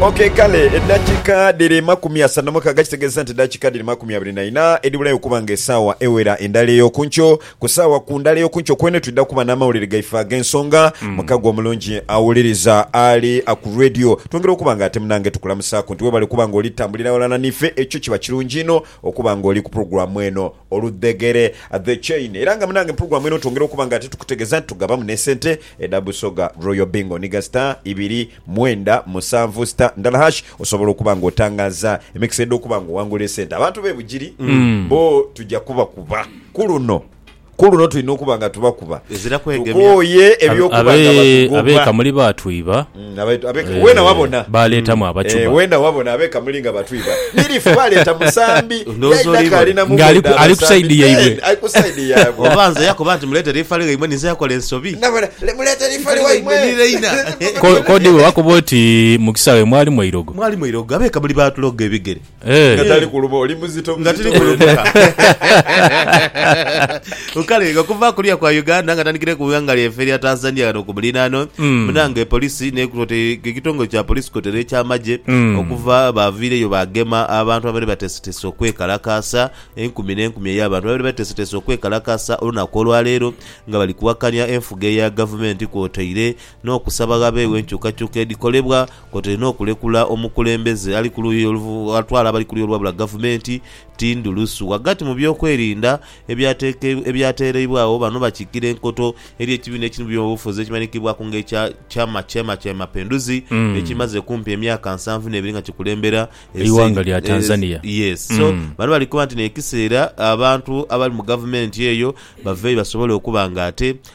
Okey kale eddakiika dhiri makumi asatu na mukaaga kitegeeza nti eddakiika dhiri makumi abiri na ina edhibulayo okuba nga esaawa ewera endala ey'oku nkyo. Ku saawa ku ndala ey'oku nkyo kwene twidha kuba n'amawulire gaife ag'ensonga mukago omulungi awuliriza ali ku Radio. Twongera okuba nga ate munange tukulamusaaku nti webale okuba nga oli tambulira ghalala n'ife ekyo kiba kirungi inho okuba nga oli ku pulogulaamu eno. Oludhegere, The Chain, era nga munange Mpulugwa mwene otwongera okuba nga ate tukutegeza nti tugabamu ne sente edha Busoga Royal Bingo niga star ibiri mwenda musanvu star ndala hash osobola okuba nga otangaza emikisa edho okuba nga owangula esente. Abantu be Bugiri bo tuja kubakuba kuluno kuluno tulina okuba nga tubakuba Ezira kwegemya. tukooye Abe- eby'okuba nga abe- batugobwa. Abekamuli baatwiba. Baaleetamu abacuba. Ng'ali ku saidi yaibwe. Oba nze yakoba nti muleetere ifali ghaimwe ninze yakola ensobi? K'odi bwe bakoba oti mu kisaawe mwalimu eirogo. Mwalimu eirogo. Abeekamuli baatuloga ebigere. Eh. nga tali kuluma oli muzito nga tiri muzito wena. kulumuka kale nga kuva kuliya kwa uganda nga tandikire ku ighanga lyaife erya tanzania ghano ku muliraano Mm. munange polisi ne kwote- ekitongole kya polisi kwotaire ekyamagye Mm. okuva baviireyo bagema abantu abaali bateeseteese okwekalakaasa enkumi n'enkumi ey'abantu abaali bateeseteese okwekalakaasa olunaku olwaleero nga bali kuwakanya enfuga eya gavumenti kwotaire n'okusaba ghabeewo enkyukakyuka edhikolebwa kwotaire n'okulekula omukulembeze ali ku luuyi oluv atwala abali ku luuyi olwabula Gavumenti, Tindu Lusu. Ghagati mu byokwerinda ebyateke ebyateereibwagho, bano bakiikira enkoto eri ekibiina ekiri mu byobufuzi ekimanhikibwaku nga ekya Chama Chema cha Mapinduzi ekimaze kumpi emyaka nsanvu n'ebiri nga kikulembera ensi Eighanga lya Tanzania. Yes. So, Mm. bano bali kukoba nti n'ekiseera abantu abali mu Gavumenti eyo baveeyo basobole okuba nga ate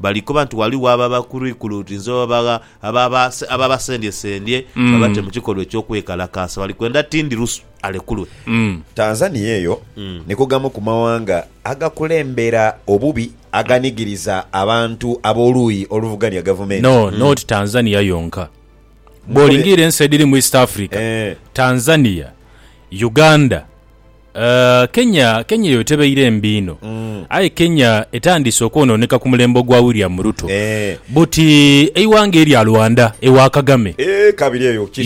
Bali koba nti ghaligho ababakwirukwirutinze oba bagha ababasendyesendye babate mu kikolwa eky'okwekalakaasa. Bali kwenda Tindi Lusu alekulwe. Tanzania eyo ni ku gamu ku mawanga agakulembera obubi aganigiriza abantu ab'oluuyi oluvuganya gavumenti. No, not Tanzania yonka. Bw'olingiira ensi edhiri mu East Africa, Tanzania, Uganda, Kenya Kenya eyo tebaire mbi inho aye Kenya etandise okwononeka ku mulembe ogwa William Ruto but eighanga erya Rwanda ewa Kagame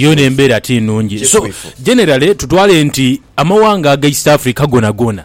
yoona embera ti nungi so generally tutwale nti amaghanga aga East Africa gonagona.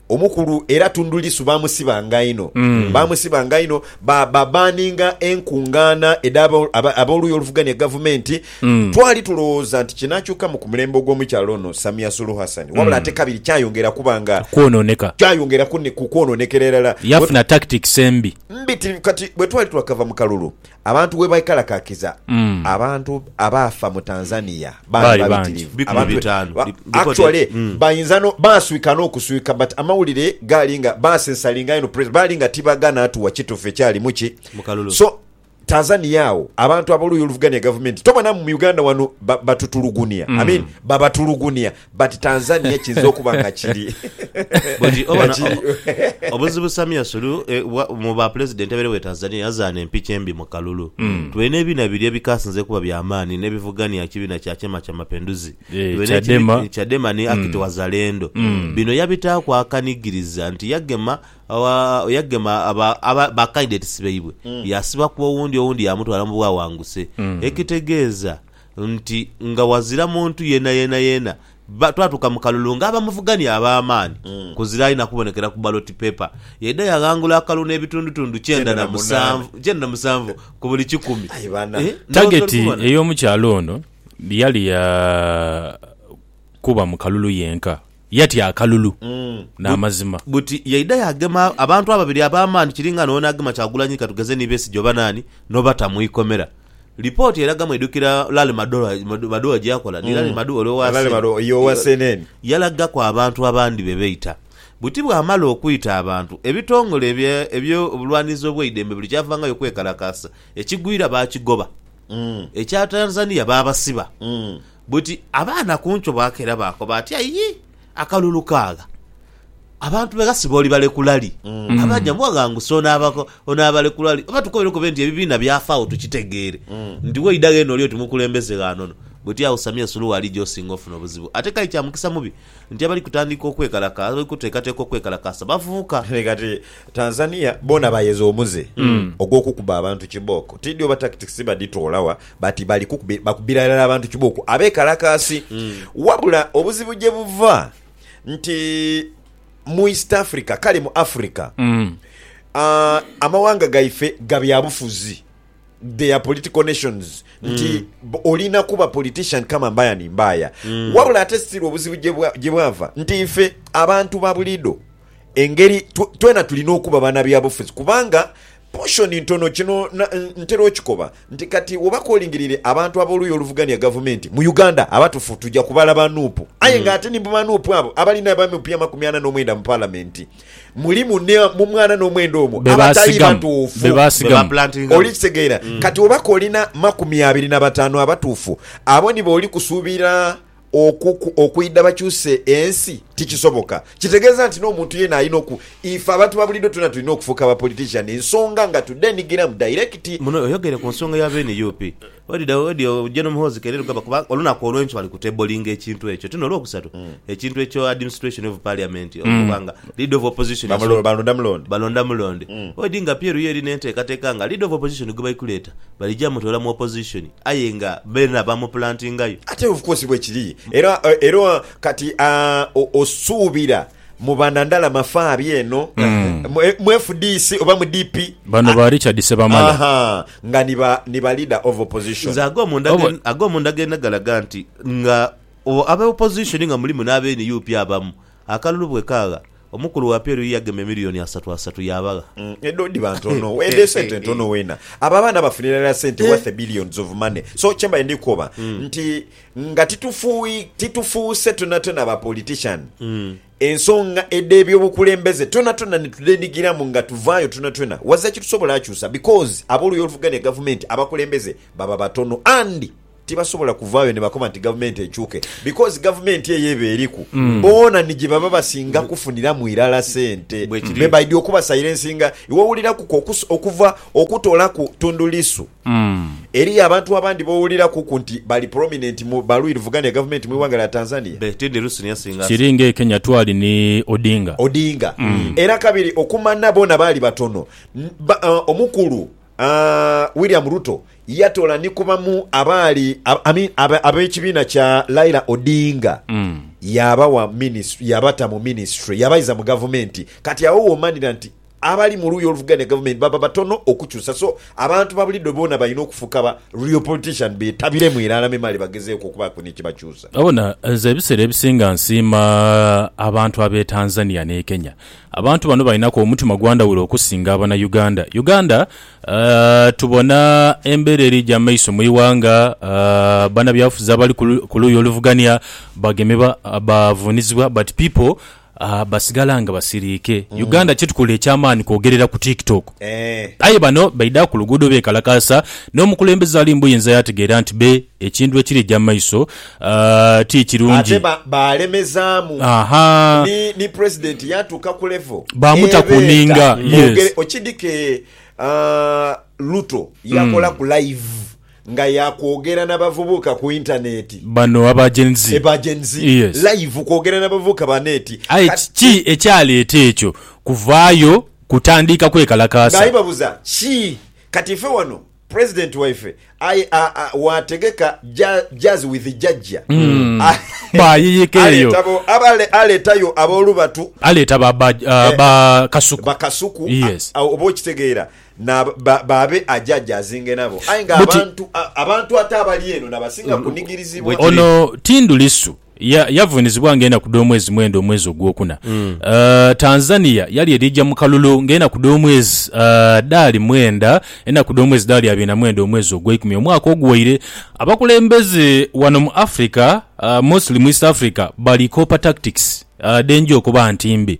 Omukulu era Tundu Lissu baamusibanga inho. Baamusibanga inho, ba, babaaninga enkungaana edh'aba, aba, ab'oluuyi oluvugania Gavumenti. Twali tulowooza nti kinaakyukamu ku mulembe ogw'omukyala ono Samia Suluhu Hassan. Wabula ate kabiri kyayongera kuba nga, Kwonooneka. kyayongera kune, ku kwonoonekera irala. Bwe, Yafuna tactics embi. mbi ti, kati bwe twali twakava mu kalulu, Abantu webaekalakakiza abantu abaafa mu Tanzania baali babitirivu. Actually bainza no baaswika n'okuswika but amawulire gaali nga baasensalinga inho president baali nga tibagana atuwa kitufu ekyalimu ki so Tanzania agho abantu ab'oluuyi oluvugania gavumenti tobona mu Uganda wano batutulugunia I mean babatulugunia But Tanzania kiyinza okuba nga kiri. Buti oba na, obuzibu Samia Suluhu e, wa, mu ba pulezidenti abaire we Tanzania yazaana empiki embi mu kalulu. Mm. Tube n'ebiina biri ebikasinze okuba bya maani n'ebivugania ekibiina kya Chama cha Mapinduzi. Eh, Tube n'ekibi- Chadema. Chadema ni Akiti Wazalendo. Bino yabitaaku akanigiriza nti yagema awa, yagema aba, aba, ba candidates baibwe yasibaku owundi owundi yamutwala mu bwawanguse. Ekitegeeza nti nga wazira muntu yena yena yena ba twatuuka mu kalulu nga abamuvugania ab'amaani kuzira aina kubonekera ku ballot paper yaidha yaghangula akalulu n'ebitundutundu kyenda na musanvu kyenda na musanvu ku buli kikumi Aye bana. Eh, ndhoghoza ori Tageti kubona? ey'omukyala ono yali ya kuba mu kalulu yenka. Yatya akalulu n'amazima. Buti yaidha yaagema abantu ababiri ab'amaani kiri nga n'ono agema Kyagulanyi ka tugeze ni Besigye oba naani, n'obata mu ikomera. Lipooti eraga mwidhukira Larry Madowo gye yakola? Ni Larry Madowo ole owa cnn? Yalagaku abantu abandi be beita. Buti bw'amala okwita abantu, ebitongole eby'obulwanirizi obw'eidembe buli kyavangayo kwekalakaasa. Ekigwira baakigoba. Ekya Tanzania baabasiba. Buti abaana ku nkyo bwakeera baakoba ati, Ayi akalulu kaagha! Abantu be ghasiba olibalekula li? Abaja mbwa ghanguse onaabalekula li? Oba tukobere kobe nti ebibiina byafaagho tukitegeere nti waidha ghene oli oti mukulembeze gha nono. Buti awo Samia Suluhu ali gy'osinga ofuna obuzibu. Ate k'aye kya mukisa mubi nti abali kutandika okwekalakaasa, abali kuteekateeka okwekalakaasa bavubuka. Aye kati Tanzania boona bayeza omuze ogw'okukuba abantu kibooko. Tiidhi oba tactics badhitoola wa but bali kukubi, bakubira irala abantu kibooko abeekalakaasi. Wabula obuzibu gye buva nti mu East Africa kale mu Africa, ah, amawanga gaife ga byabufuzi. their political nations nti mm. b- olina kuba politician kama mbaya ni mbaya mm. wabula ate siri obuzibu gye bwa- gye bwava nti ife abantu ba bulido engeri tw- twena tulina okuba bana byabufuzi kubanga poshoni ntono kino na- n- ntera okikoba nti kati oba kolingirire abantu ab'oluuyi oluvugania gavumenti mu uganda abatufu tujja kubala ba nuupu aye nga ate ni mu ba nuupu abo abalina ba mp amakumi ana n'omwenda mu palamenti mulimu ne mu mwana n'omwenda omwo Be abatali baasigamu. batuufu Be baasigamu. Bebaplantinga. oli kitegeera kati obaka olina makumi abiri na bataanu abatuufu abo nibo oli kusuubira okuku- okwidha bakyuse ensi tikisoboka kitegeeza nti n'omuntu yena alina oku ife abantu babuliido twena tulina okufuuka ba politician ensonga nga tudhenigiramu direct Muno oyogere ku nsonga ya b'NUP. Odidha odyo ojje n'omuhoozi keire Lugaba kuba olunaku olw'enkyo bali ku tablinga ekintu ekyo. Tino Olwokusatu, hmm. ekintu ekyo administration of parliament hmm. okuba nga leader of opposition balonda mulonde balonda mulonde hmm. odi nga Pieru yo eri n'enteekateeka nga leader of opposition gwe bali kuleeta balija mutoola mu opposition aye nga beena bamuplantingayo. Ate of course bwekiri era era kati ah, osuubira Muba na ndala mafaabi eno mu fdc oba mu DP? Bano ba Richard Ssebamala. Ahaa, nga ni ba ni ba leader of opposition. Nze agomunda Oba- ge- agomunda genda galaga nti nga o- aba opposition nga mulimu n'aba nup abamu, akalulu bwekaagha, omukulu wa PLU yagema emiliyoni asatu asatu yaabagha. Mm, edhoodi bantu ono edho esente ntono wena abo abaana bafunira irala sente worth billions of money so kyembade ndikukoba nti Nga titufuuse twonatwona ba politician, ensonga edhebyobukulembeze twonatwona nitudhedhigiramu nga tuvaayo twonatwona, waza kitusobola kyusa because aboluuyi oluvuganya gavumenti abakulembeze baba batono and tibasobola kuvaayo nibakoba nti gavumenti ekyuke because gavumenti eyo eba eriku boona nijebaba basinga kufuniramu irala sente. Bwebaidhi okuba silensinga iwe wuliraku ku okuva okutolaku Tundu Lissu. Eriyo abantu abandi b'owulirakuku nti bali prominent mu balwirivugana ya gavumenti mu ighanga lya Tanzania. Kiri nga e Kenya twali ni Odinga. Odinga. Era kabiri okumanha boona baali batono. Omukulu William Ruto yatola ni ku bamu abaali ab'ekibiina kya Laila Odinga yabawa minisitule, yabata mu minisitule, yabaiza mu gavumenti. Kati agho w'omanhira nti Abali mu luuyi oluvuganya gavumenti baba batono okukyusa so abantu babulido boona balina okufuuka ba real politician betabiremu irala memale bagezeeku okubaaku ni kyebakyusa. Obona, nze ebiseera ebisinga nsiima abantu ab'e Tanzania n'e Kenya. Abantu bano balinaku omutima gwa ndhawulo okusinga abana Uganda. Uganda tubona embeera erija mu maiso mu ighanga, banabyabufuzi abali ku luuyi oluvugania bagemebwa, bavuunizibwa but people Aah basigala nga basiriike. Uganda kyetukola ekyamaani kwogerera ku TikTok. Aye bano baidha ku luguudo beekalakaasa n'omukulembeze ali mu buyinza yaategeera nti be ekintu ekirija mu maiso ti kirungi. Ahaa. Baamuta ku nninga. Yes. nga ya kwogera na bavubuka ku intaneeti. Bano aba Gen Z. Eba Gen Z Yes. live kwogera na bavubuka ba neeti. Aye Kati kiki ekyaleeta ekyo kuvaayo kutandiika kwekalakaasa? Nga ibabuza ki kati ife wano president waife aye a a wategeka ja jazz with jajja a Baayeyeka eyo. aleeta bo abale aleetayo abolubatu Aleeta ba ba a Eh, ba kasuku. ba kasuku a Yes. a oba okitegeera Na ba, baabe ajaajaazinge nabo. Aye nga Buti. abantu, a, abantu ate abali eno na basinga kunigirizibwa. Bwe kiri. Ono Tindu Lissu ya, yavunizibwa nga enaku dh'omwezi mwenda omwezi ogwokuna. Uh, Tanzania yali edhija mu kalulu nga enaku dh'omwezi, uh, dhaali mwenda, enaku dh'omwezi dhaali abiri na mwenda omwezi ogweikumi omwaka oguwaire. Abakulembeze wano mu Africa, uh, mostly mu East Africa, bali copper tactics, uh, dhenja okuba nti mbi.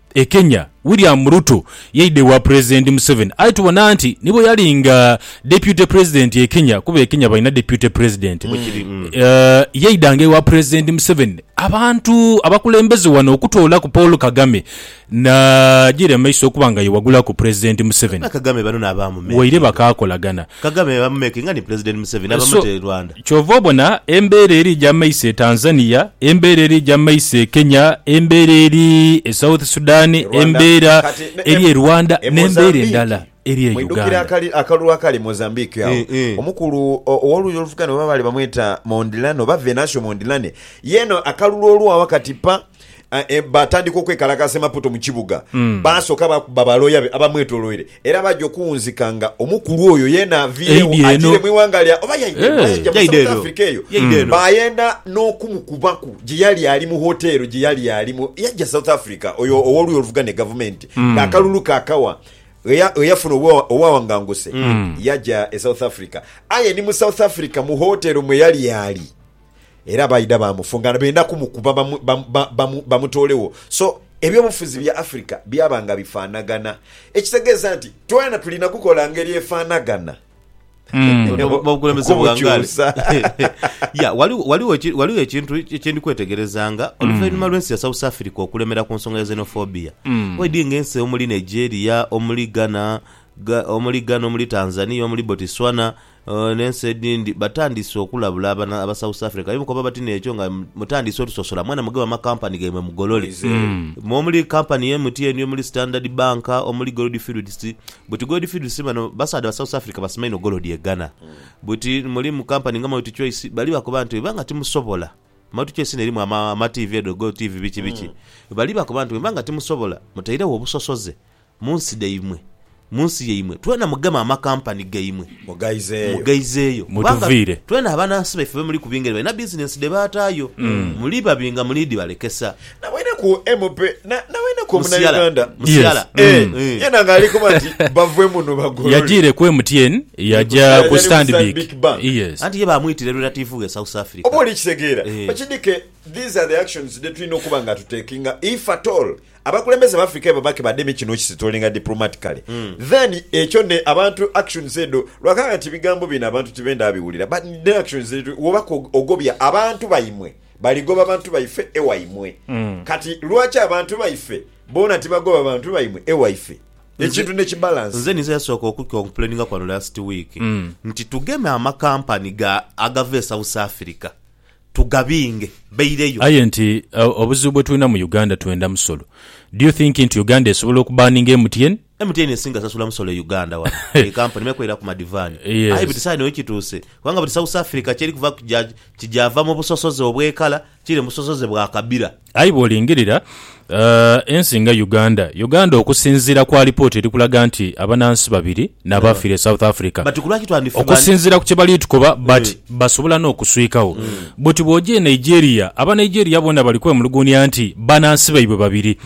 E Kenya, William Ruto yaidha ewa Pulezidenti Museveni aye tubona nti ni bwe yali nga Deputy Pulezidenti e Kenya, kuba e Kenya balina Deputy Pulezidenti, yaidhanga ewa Pulezidenti Museveni abantu abakulembeze wano okutoolaku Paul Kagame n'agira mu maiso okuba nga ye wagulaku Pulezidenti Museveni waire bakaakolagana. Kagame bamumekinga ni Pulezidenti Museveni aba So, mute Rwanda. kyova obona embeera eri eja maiso e Tanzania, embeera eri eja maiso e Kenya, embeera eri e South Sudan, Rwanda, embeera kati ne eri e e Rwanda e n'embeera endala Mozambique. eri e Mwidhukire Uganda. akali akalulu akali Mozambique agho, Eeh eeh. omukulu o, ow'oluuyi oluvuganya oba baali bamweta Mondlane oba Venancio Mondlane, yeeno akalulu olwo agho kati pa, Ah, eh, baatandika okwekalakaasa e Maputo mu kibuga. Baasooka baakuba balooya be abamwetoloire era baaja okuwunzika nga omukulu oyo yeena aviirewo Eidhi eno. agiire mu ighanga lya oba yaidha eno, Eh, yaidha mu yaidha South eno. Africa eyo. Yaidha eno. Baayenda n'okumukubaku gye yali ali mu hoteero gye yali alimu. Yajja South Africa oyo ow'oluuyi oluvugana e gavumenti ng'akalulu kaakawa eya- eyafuna obwa- obwawanganguse yajja e South Africa. Aye ni mu South Africa mu hoteero mwe yali ali Era baidha baamufunga nga benda kumukuba bamutoolegho. So, ebyobufuzi bya Afirika byaba nga bifaanagana. Ekitegeeza nti twena tulina kukola ngeri efaanagana okubukyusa. Ghaligho ekintu kye ndi kwetegerezanga. Oluvainhuma lw'ensi ya South Africa okulemera ku nsonga ya xenophobia, waidhi ng'ensi omuli Nigeria, omuli Ghana, omuli Tanzania, omuli Botswana, N'ensi edhindi batandise okulabula abana aba South Africa aye mukoba bati n'ekyo nga mutandise otusosola mwena mugebe amacompany gaimwe mugolole. Omuli company ya MTN, omuli Standard Bank, omuli Goldfields. Buti Goldfields bano basaadha ba South Africa basima inho golodi e Ghana. Buti mulimu company nga Multichoice bali bakoba nti bwemubanga timusobola, Multichoice eno erimu ama TV edho, Gotv biki biki, bali bakoba nti bwemubanga timusobola mutairegho obusosoze Mu nsi dhaimwe, mu nsi yaimwe, twena mugeme amakampani gaimwe. Mughaizeeyo. Kubanga twena abanansi baife bwe muli kubinga ere balina bizinensi dhe baataayo. Muli babinga muli dhibalekesa. Naboineku MP naboineku Omunauganda yeena ng'ali koba nti bave muno bagolole. Yajiire ku MTN yaja ku Stanbic. Anti ye baamwitira e relativu ghe South Africa. Oba oli kitegeera? Okidhike these are the actions dhe tulina okuba nga tutekinga if at all. Abakulembeze bafrika ebo bake bademe kino okisitolinga diplomatically then ekyo ne abantu actions edho lwakanga nti bigambo bino abantu tibenda biwulira but ne actions woba ko ogobya abantu baimwe baligoba bantu baife ewaimwe kati lwaki abantu baife bona tibagoba bantu baimwe ewaife ekintu ne kibalance. Nze ninze yasooka oku complaininga kwano last week nti tugeme amakampani ga agava e South Africa tugabinge baireyo. Aye nti obuzibu bwetulina mu Uganda twenda musolo do you think nti Uganda esobola oku banninga MTN? MTN esinga sasula musolo e Uganda wano ye kampuni me kwera ku madivani aye but saino wekituuse kubanga but South Africa kyerikuvaku kija kija va mubusosoze obwekala kire mubusosoze bwa kabira. Aye bw'olingirira ensi nga Uganda, Uganda okusinziira ku alipoota eri kulaga nti abanansi babiri n'abaafiira e South Africa okusinziira ku kye bali tukoba but basobola n'okuswikagho. Bwoti bw'oja e Nigeria, Abanigeria boona bali kwemuluguunia nti banansi baibwe babiri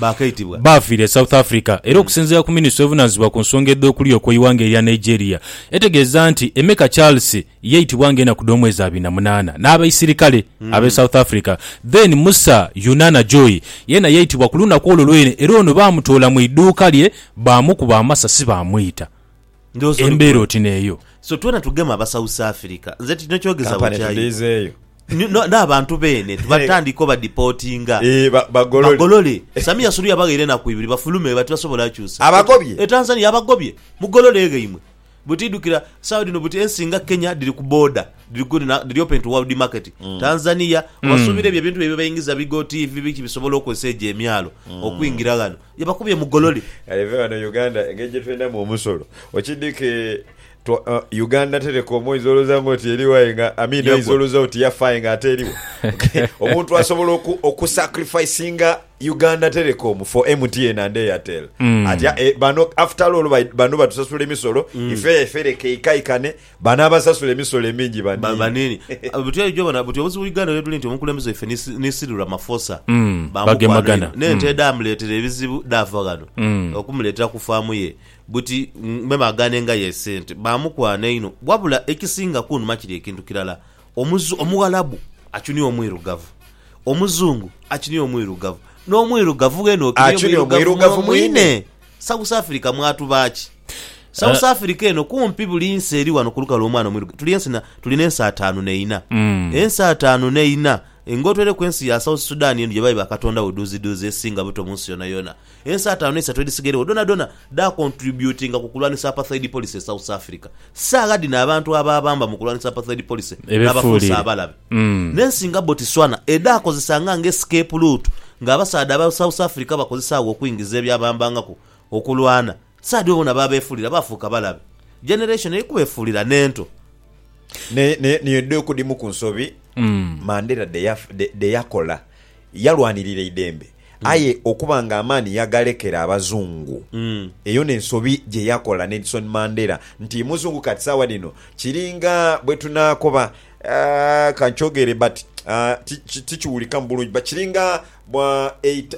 baafiira e South Africa era okusinziira ku minisitule evunaanyizibwa ku nsonga edh'okulya okw'eighanga erya Nigeria etegeeza nti Emeka Charles, Yaitibwa nga enaku dh'omwezi abiri na munaana n'abaisirikale ab'e South Africa. Then Musa Yunana Joy yeena yaitibwa ku lunaku olwo lwene era ono baamutoola mu idhuuka lye baamukuba amasasi baamwita. Ndhooza oli Embeera gwe. oti n'eyo. So twena tugema aba South Africa. Nze tino kyogeza Kampani bukya yo. tudhiizeeyo. Ni- no- N'abantu beene tubatandike obadipootinga. Eeh, ba- bagolole. Bagolole. Samia Suluhu yabaghaire enaku ibiri bafulume bati basobola kyusa. Abagobye? E Tanzania abagobye. Mugolole eghaimwe. Buti idhukira sawa dhino buti ensi nga Kenya dhiri ku border dhiri good na dhiri open to world market. Mm. Tanzania mm. wasuubira ebyo ebintu bye baingiza bigo TV biki bisobola okozesa egyo emyalo mm. okuingira ghano. Yabakubye mugolole. Eve wano Uganda engeri gye twendamu omusolo. Okidike Twa, uh, Uganda Telecom oyinza olowooza nga oti eriwo aye nga Amin oyinza olowooza oti yafaye nga ate eriwo omuntu asobola oku, okusacrificinga Uganda Telecom for MTN and Airtel ati eh, bano after all bai- bano batusasula emisolo ife efe leka eikaikane bano abasasula emisolo emingi Ba- banini banini buti ejo bona buti obuzibu uganda webuli nti omukulembeze waffe ni si- ni silura mafosa Mm, Bamukwano bagemagana. inho. nente edamuletera ebizibu dava ghano okumuletera ku faamu ye buti mm, meme agane nga yesente bamukwano inho wabula ekisinga kunuma kiri ekintu kirala Omughalabu achunia Omwirugavu, Omuzungu achunia Omwirugavu, n'Omwirugavu ghene ochunia Omwirugavu mwine. South Africa mwatuba ki? South eh. Africa eno kumpi buli nsi eri wano ku lukalu omwana Omwirugavu. Tuli ensi na, tulina ensi ataanu neina. Mm. Ensi ataanu neina. Ng'otweleku ensi ya South Sudan eno gye bayi bakatondawo duuzi duuzi esinga buto mu nsi yona yona. Ensi ataanu eisatu edhisigairogho dhonadhona dhaakontributinga ku kulwanisa Apartheid Policy e South Africa. Saagha dhino abantu abaabamba mu kulwanisa Apartheid Policy baabafuuse abalabe. N'ensi nga Botiswana edhaakozesanga nga escape route ng'abasaadha aba South Africa bakozesa agho okwingiza ebyabambangaku okulwana. Sadhi bona baabeefuulira baafuuka balabe. Generation eri kubeefuulira n'ento. Naye naye dhe kudhimu ku nsobi Mandela dhe yakola. Yalwanirira eidembe aye okuba nga amaani yagalekera Abazungu. Eyo n'ensobi gye yakola Nelson Mandela nti Muzungu kati saagha dhino kiringa bwe tunaakoba ka nkyogere but tikiwulikamu bulungi but kiringa bwa eita.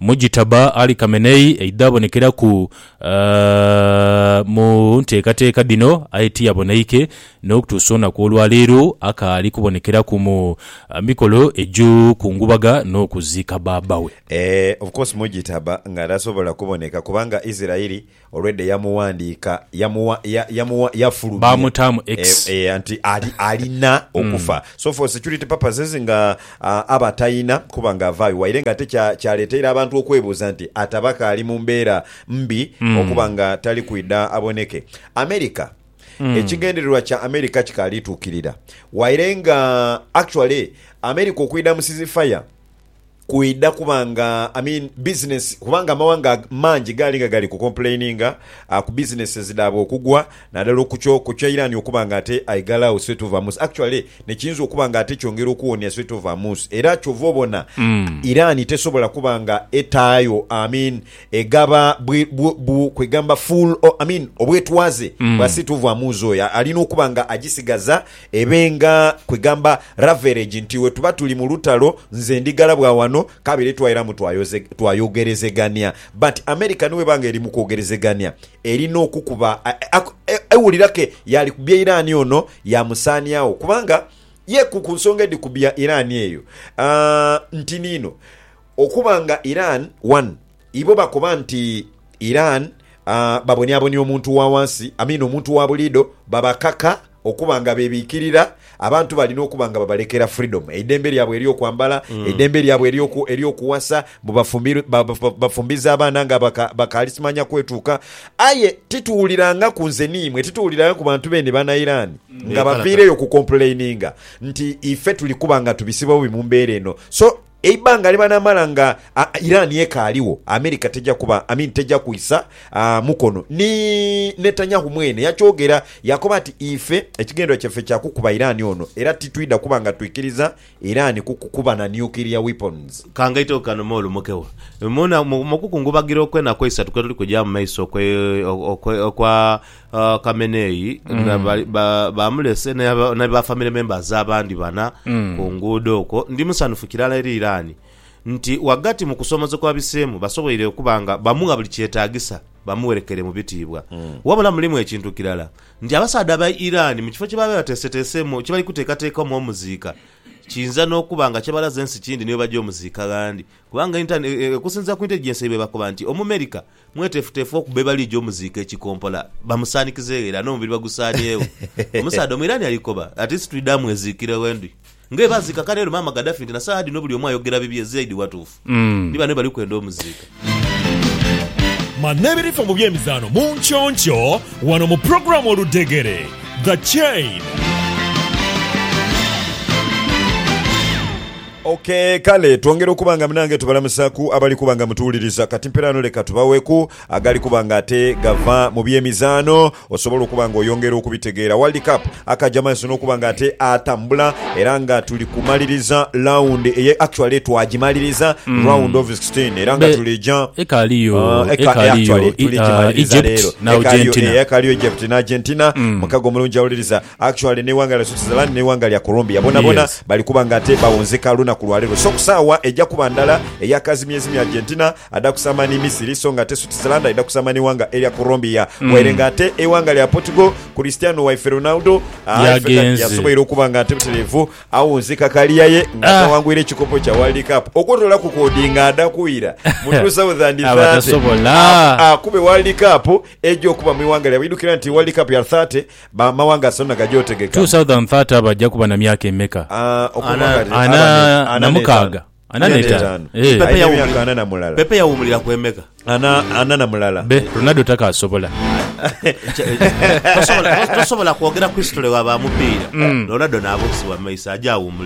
Mujitaba Ali Khamenei aidha abonekeraku mu nteekateeka dhino aye tiyaboneike n'okutuusa olunaku olwaleero akaali kubonekeraku mu mikolo egy'okungubaga n'okuziika bbaabbawe. Eeh of course Mujitaba nga tasobola kuboneka kubanga Isirairi Already yamuwandiika, yamuwa, ya, yamuwa, yafulumya. Baamutaamu X. Eh, eh, anti ali, alina okufa. So for security purposes nga ah, aba atalina kuba nga avaayo waire nga ate kya, kyaleteire abantu okwebuuza nti ataba kaali mu mbeera mbi okuba nga tali kwidha aboneke. America, ekigendererwa kya America kikaali tuukirira. Waire nga, actually, America okwidha mu ceasefire, kwidha kuba nga I mean business kubanga amawanga mangi gaali nga gali ku complaininga ah, ku businesses dhaabwe okugwa nadala okukyo ku kya Iran okuba nga ate aighalagho Strait of Hormuz actually nekiyinza okuba nga ate kyongera okuwonia Strait of Hormuz era kyova obona Iran tesobola kuba nga etaayo I mean egaba bwi, bwu, bwu, kwegamba full o- I mean obwetwaze bwa Strait of Hormuz oyo alina okuba nga agisigaza Ebe nga kwegamba raveregi nti wetuba tuli mu lutalo nze ndi ghala bwa wano kabere twairamu twayogerezegania but America niweba nga eri mu kwogerezegania erina okukuba ewulira ke yaali kubya Iran ono yamusaaniagho kubanga ye ku ku nsonga edhi kubya Iran eyo nti niino okuba nga Iran one Ibo bakoba nti Iran babonyabonya omuntu wa wansi, amina omuntu wa buliidho, babakaka okuba nga bebiikirira, abantu balina okuba nga babalekera freedom, eidembe lyabwe ery'okwambala, eidembe lyabwe ery'okuwasa, mbu bafumbiza abaana nga bakaali simanya kwetuuka. Aye tituwulirangaku nze ni imwe, tituwulirangaku bantu beene bana Iran nga baviireyo okukompuleininga nti ife tuli kuba nga tubisiba bubi mu mbeera eno. So. Eibanga lyebanamala nga Iran ekaaligho, America teja kuba, I mean teja kwisa mukono. Ni Netanyahu mwene yakyogera yakoba nti, Ife ekigendererwa kyaffe kya kukuba Iran ono era titwidha kuba nga twikiriza Iran kukuba na nuclear weapons. Ka ngaiteku kano me olumukewo. Mu kukungubagira okwenaku eisatu kwetuli kugyamu mu maiso okwa. Uh, Kamenei na ba- ba- bamulese ne ba- ne ba family members abandi bana ku nguudo okwo ndi musanhufu kirala eri Iran nti wagati mu kusoomoza kwa biseemu basoboire okuba nga bamugha buli kyetaagisa bamuwerekere mu bitiibwa wabula mulimu ekintu kirala nti abasaadha aba Iran mu kifo kye baba bateeseteeseemu kye bali kuteekateekamu omuziika kiyinza n'okuba nga kyebalaze ensi kindi niyo bajja omuziika ghandi kubanga inter- e- e- okusinziira ku intelligence yaibwe bakoba nti omumerika Mweteefuteefu okuba ye baligya omuziika ekikompola, bamusaanikizeegho ela n'omubiri bagusaaniegho. Omusaadha Omuirani ali koba ati, Situidha mweziikire ghe ndi. Nga bwe baaziika Kanelo, Maama Gaddafi nti na saagha dhino buli omu ayogera bibye, Zeid watuufu. Ni bano bye bali kwenda omuziika. Manha ebirifa mu by'emizaano mu nky'onkyo wano mu pulogulaamu Oludhegere, The Chain. Ok kale twongere okuba nga munange tubalamusaku abali kuba nga mutuwuliriza kati mperaano leka tubaweku agali kuba nga ate gava mu byemizaano osobole okuba nga oyongera okubitegeera World Cup akaja mumaiso nokuba nga ate atambula era nga tuli kumaliriza round eye actually twagimaliriza round of 16 era nga Be- tulija Ekaliyo, Ah, eka- ekaliyo, actually, i- tuligimaliriza ah, Egypt leero. na Ekaliyo, Argentina. eh, ekaliyo egypt ne argentina mukago omulungi awuliriza Actually neighanga lya Switzerland neighanga lya Colombia bonabona Yes. bali kuba nga ate bawunzika lunaku lwalero so kusaawa eja kuba ndala eya kazimyezimye Argentina ada kusama ni Misiri so nga ate Switzerland aidha kusama neighanga elya Colombia Mm. waire nga ate eighanga lya Portugal Cristiano waife Ronaldo aa, Yagenze. yasoboire okuba nga ate buterevu awunzika kaliya ye nga Ah. atawangwire ekikopo kya World Cup okwotola ku kodi nga ada kwira mu 2030 Abatasobola. a- akube World Cup eja okuba mu ighanga lyabwe idukira nti World Cup ya 30 Ba mawanga asonda gaja otegeka. 2030 baja kuba na myaka emeka? Ana na mukaaga. Ana n'etaanu. Eeh. Aye n'emyaka ana na mulala. Pepe yawumulira ku emeka? Ana, ana na mulala. Be, Ronaldo takaasobola. Tosobola, tosobola kwogera ku history wa ba mupiira. Ronaldo n'abuusibwa mu maiso, aja awumulira.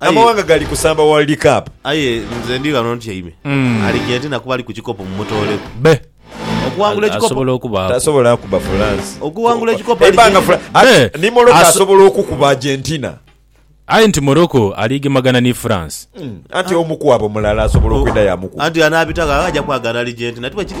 Aye- Amawanga gali kusamba World Cup. Aye nze ndi ghano ntyaime. Aligentina kuba ali ku kikopo mumutooleku. Be. Okuwangula ekikopo. Asobola okubaaku. Tasobola kuba France. Okuwangula ekikopo Ebanga Aligentina. Fra- Be. Ati, ni Morocco Aso- asobola okukuba Argentina. Aye nti Morocco aligemagana ni France. Anti omu kwabo mulala asobola okwenda yamukuba. Anti anaabitagho aye aja kwagala Aligentina. Tiwekiri?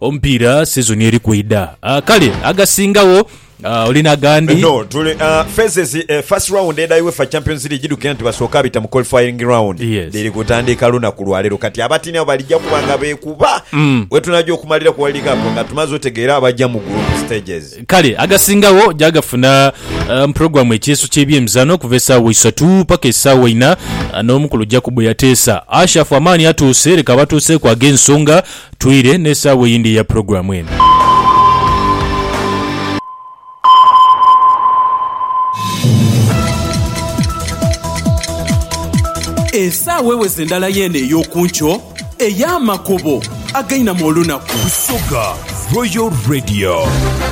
Omupiira sizoni eri kwidha. Kale agasingagho oli na gandi? No, tuli phases. First round edha Uefa Champions League dhidukira nti basooke abita mu qualifying round dhiri kutandiika lunaku lwa leero. Kati abatini abo balija kuba nga beekuba wetunaja okumalira ku World Cup nga tumaze otegeera abaja mu group stages. Kale agasingagho gyagafuna mu pulogulaamu ekyeeso ky'ebyemizano okuva esaawa isatu paka esaawa inha n'omukulu Jacob yateesa. Ashafu amaani atuuse, leka abatuuseeku ag'ensonga Twire n'esaawa eyindi eya pulogulaamu eno. Esaawa eweze endala yeene ey'oku nkyo ey'amakubo againama olunaku. Busoga Royal Radio.